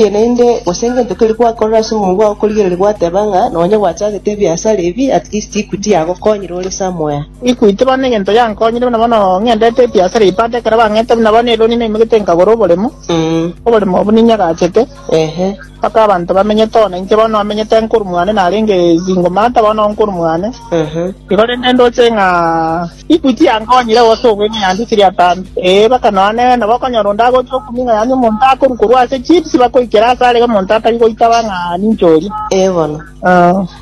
Inche naende, gose egento keria gwakorire ase omoyo bwao korigereria gwateba ng'a nonya gwachagete ebiasara ebi, at least Equity yagokonyire ore somewhere. Equity bono egento yankonyire buna bono ng'endete ebiasara ebi baada ekero bang'eete buna bono eloni naimoigete nkagora oboremo, oboremo obwo niinye agachete, Ehe. mpaka abanto bamenyete oo nainche bono amenyete nkorwa mwane narenge single mother bono nkorwa mwane, Ehe. igo rende ndoche ng'a. Inchuo chiankonyire gose obo ime yande esiri atambe. Ee, baka nonya nere nabo okonyora onde agocha okuming'a yaani omonto akorwa korwa ase chips bakoikera ase are omonto atari goitaba ng'a ninche oria. Ee bono.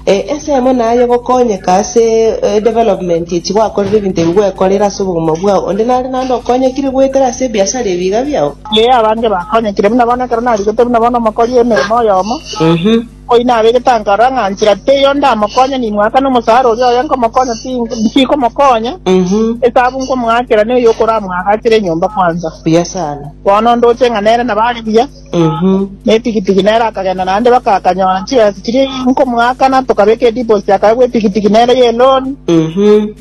Ee, ensemo naye gokonyeka ase edevelopment echi gwakorire ebinto ebi gwekorire ase obogima bwao. Onde nare naende okonyekire goetera ase ebiasara ebiiga biao? Ee, abange bakonyekire. Buna bono ekero narigetwe buna bono omokori emeremo oyomo. Oino abe getango aroro ng'a nchera teiyo ndamokonye, nimwaka nomosaara oria oye nkomokonya tikomokonya, esabu nkomoakera neye okoramwagachere enyomba kwanza. Buya sana. Bono ndoche ng'a nere nabo are buya, na epikipiki nere akagenda naende baka akanyora chibesa chiria nkomoakana, tokabeka edeposit akaegwa epikipiki nere y'eloni.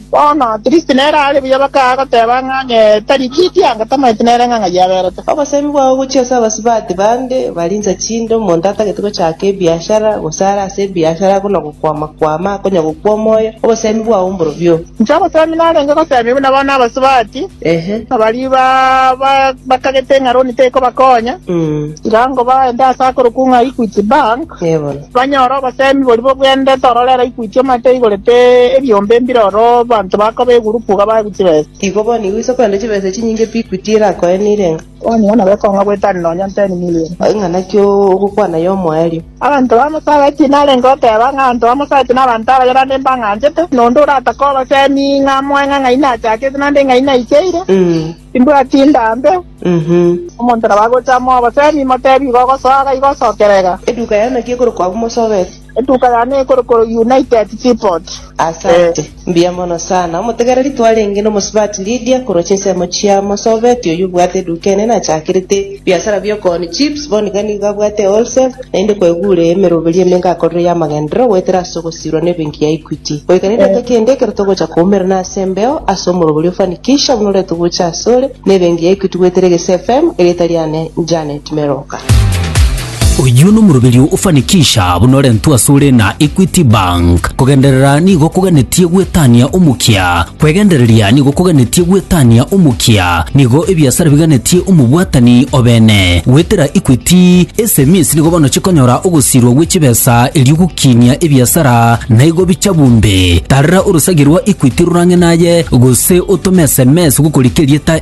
Bono Tiristi nere aare buya bakaya goteba ng'a onye tari rieti anga tamanyeti nere ng'a ng'ai aberete. Obosemi bwao ogochia ase abasubati bande bari insa chinde, omonto atagete gochaaka ebiashara, gose are ase ebiashara buna gokwama-kwama akonya gokwa omoyo, obosemi bwao mborobio. Inche obosemi narenge gosemia buna bono abasubati, Ehe. baria bakagete ng'a roni tekobakonya, tiga ngobaende ase akorokwo ng'a Equity Bank. Ee bono. Banyore obosemi boria bogwenerete ororere ikuti omate igoro te ebiombe mbire oro abanto bakoba egurupu iga baegu chibesa. Igo boni igo iso korende chibesa chinyinge pi ikuti ere akoe nire ng'a. Onye ng'a nabo ekong'a goetania nonya nteni milion. Ng'a naki ogokwana y'omoerio. Abanto bamosabeti narenge oteba ng'a abanto bamosabeti nabanto abagerande mbang'anchete, na onde oratake obosemi ng'a amoe ng'a ng'ai nachakete naende ng'ai naikeire. Timbwati ndambe. Omonto nabo agocha amo oboseemi imoteebie igo ogosoa iga igo osokera iga. Eduka yane naki ekorokwa abwo mosobete? Eduka yane ekorokwa United Seaport. Asante. Mbuya mono sana. Omotegereri twarenge nomosubati Lydia korwa chinsemo chia mosobeti oyio obwate eduka enene achakerete. Biasara bi'okooni chips, bono iga nigo abwate ewholesale, naende kweguure emeroberi emenge akorire y'amagenderero goetera ase ogosiirwa n'ebenki ya Equity. Goika nedaika kende ekero togocha koumerana ase embeo ase omorobori o Fanikisha buna oretwe gocha asore, na ebenki ya Equity goetera egese FM, erieta riane Janet Meroka. Oyio nomoroberio ofanikisha buna orentwe asore na Equity Bank. Kogenderera nigo koganetie gwetania omokia. Kwegendereria nigo koganetie gwetania omokia. Nigo ebiasara biganetie omobwatani obene. Goetera Equity, SMEs nigo bono chikonyora ogosirwa gwe chibesa erio gokinia ebiasara naigo bicha bumbe. Tarera orosagia rwa Equity rorang'e naye gose otome sms gokorikia erieta